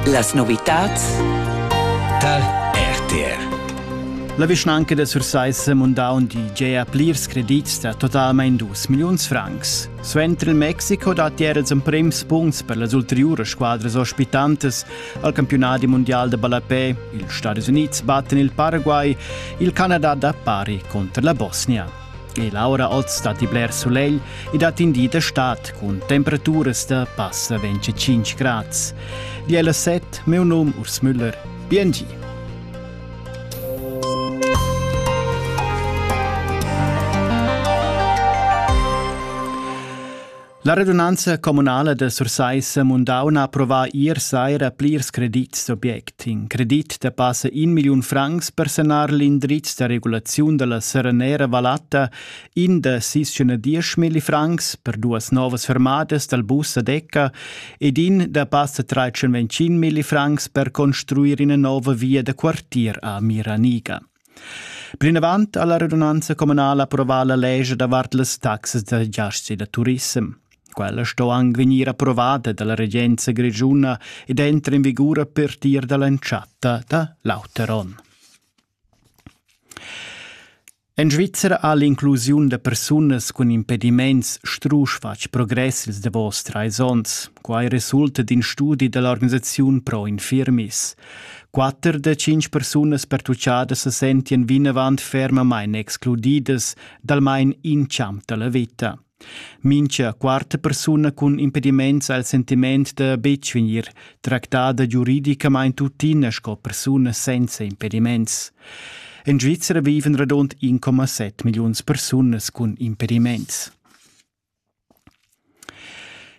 Las novitads tar RTR. La vischnanca da Sursaissa munda un DJ a plirs credits da totalmain 2 milliuns francs. Suenter il Mexico datti er els emprims punts per las ulteriuras squadras ospitantas al campionat mondial de ballapé. Ils Stati Unids battan il Paraguay, il Canada da pari contra la Bosnia. E l'aura oz datti bler sulegl e dat in di d'estat cun temperaturas da passa 25 grads. Di ella set, meu num Urs Müller. Biengi. La radunanza communala da Sursaissa Mundaun ha approvà ier saira plirs credits d'object. In credit da passa in milliun francs per sanar l'indriz da regulaziun da la Serenera Valatta, in da sis schena diesch milli francs per duas novas fermadas dal bus a Decca ed in da passa tretschen ventschin milli francs per construir ina nova via da quartier a Miraniga. Plinavant ha la radunanza communala approvà la lescha davart las taxas da giaschi da turissem. Quella sto anc vegnir approvada dalla regenza grischuna ed entra in vigur a partir dall'entschatta da l'auter onn. En Svizzera ha l'inclusiun da persunas cun impediments strusch fatg progress ils davos trais onns. Quai resulta d'in studi da l'organisaziun Pro Infirmis. Quatter da tschintg persunas pertuchadas se sentien vinavant fermamain excludidas d'almain in champ dalla veta. Mincha quarta persuna cun impediments al sentiment da betg vegnir tractada giuridicamain tuttina sco persuna senza impediments. In Svizzera viven radund 1,7 milliuns persunas cun impediments.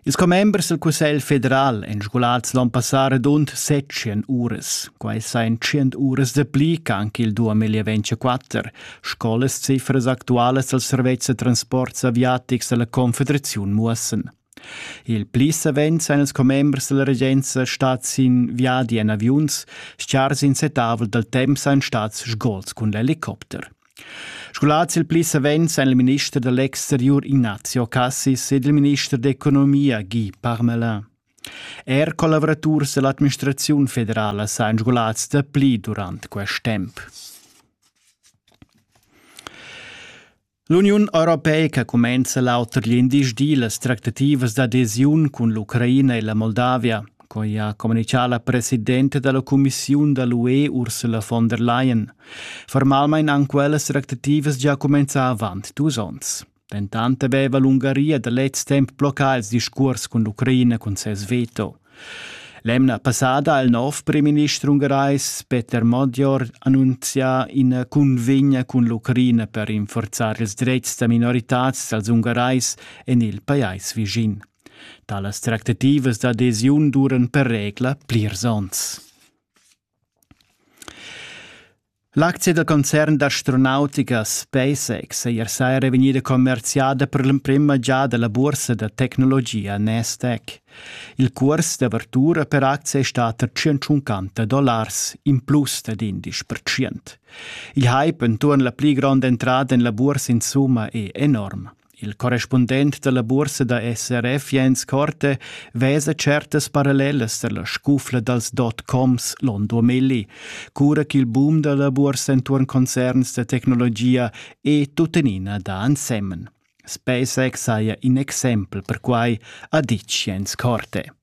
Ils commembers dal Cussegl federal èn sgulads l'onn passà radund set tschient uras. Quai sajan tschient uras dapli ch'anc il 2024, sco las cifras actualas dals servetschs da transports aviatics da la Confederaziun muossan. Il pli savens èn ils commembers da la regenza stads sin viadi en aviuns, schar sin setavel dal temp sajan stads sgols cun l'helicopter. Scolars il pli savens èn il minister da l'exteriur Ignazio Cassis ed il minister d'economia Guy Parmelin. Er collavuraturs dall'administraziun federala sajan scolars dapli durant quest temp. L'Uniun europeica cumenza l'auter glindisdi las tractativas d'adesiun cun l'Ucraina e la Moldavia. quai ha communichà la presidenta da la cumissiun da l'UE Ursula von der Leyen. Formalmain han quellas tractativas già cumenzà avant dus onns. Dentant aveva l'Ungaria da lez temp bloccà il discurs cun l'Ucraina cun ses veto. L'emna passada ha il nov primminister ungarais Peter Modior annunzià ina cunvegna cun l'Ucraina per rinforzar ils dretgs da minoritads dals ungarais en il pajais vischin. Talas tractativas d'adesiun duran per regla plirs onns. L'aczia da concern d'astronautica SpaceX è ier saira vegnida commerziada per l'emprima giada la bursa da tecnologia Nasdaq. Il curs d'avertura per aczia è stat a 150 dollars, in plus dad 11%. Il hype enturn la pli gronda entrada en la bursa insumma è enorm. Il correspundent dalla buorsa da SRF Jens Korte vesa certas parallelas dalla scufla dals dot-coms l'on 2000, cura ch'il boom dalla buorsa entuorn concerns da tecnologia è tuttenina da ensemen. SpaceX saja in exempel per quai, ha ditg Jens Korte.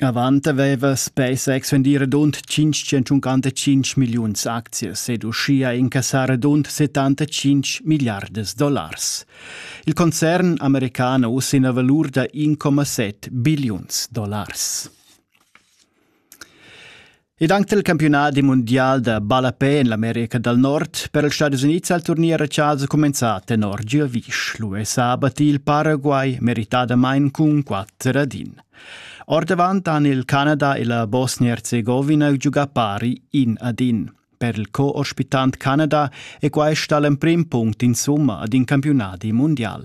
Avant haveva spesa exvendir radund tschintschentschuncantadcinc milliuns aczias ed uschia incassar radund settantatschinch milliardas dollars. Il concern american ha uss ina valur da 1,7 billiuns dollars. Ed anche il campionat mondial da ballapè en l'America dal Nord per ils Stati Unids al turnier a Charles è cumenzà tenor Giovic. L'US ha abbatì il Paraguay meritadamain cun quatter ad in. Ordavant han il Canada e la Bosnia-Herzegovina giugà pari in ad in. Per il co-ospitant Canada è questa l'emprim punct insumma ad in campionat mundial.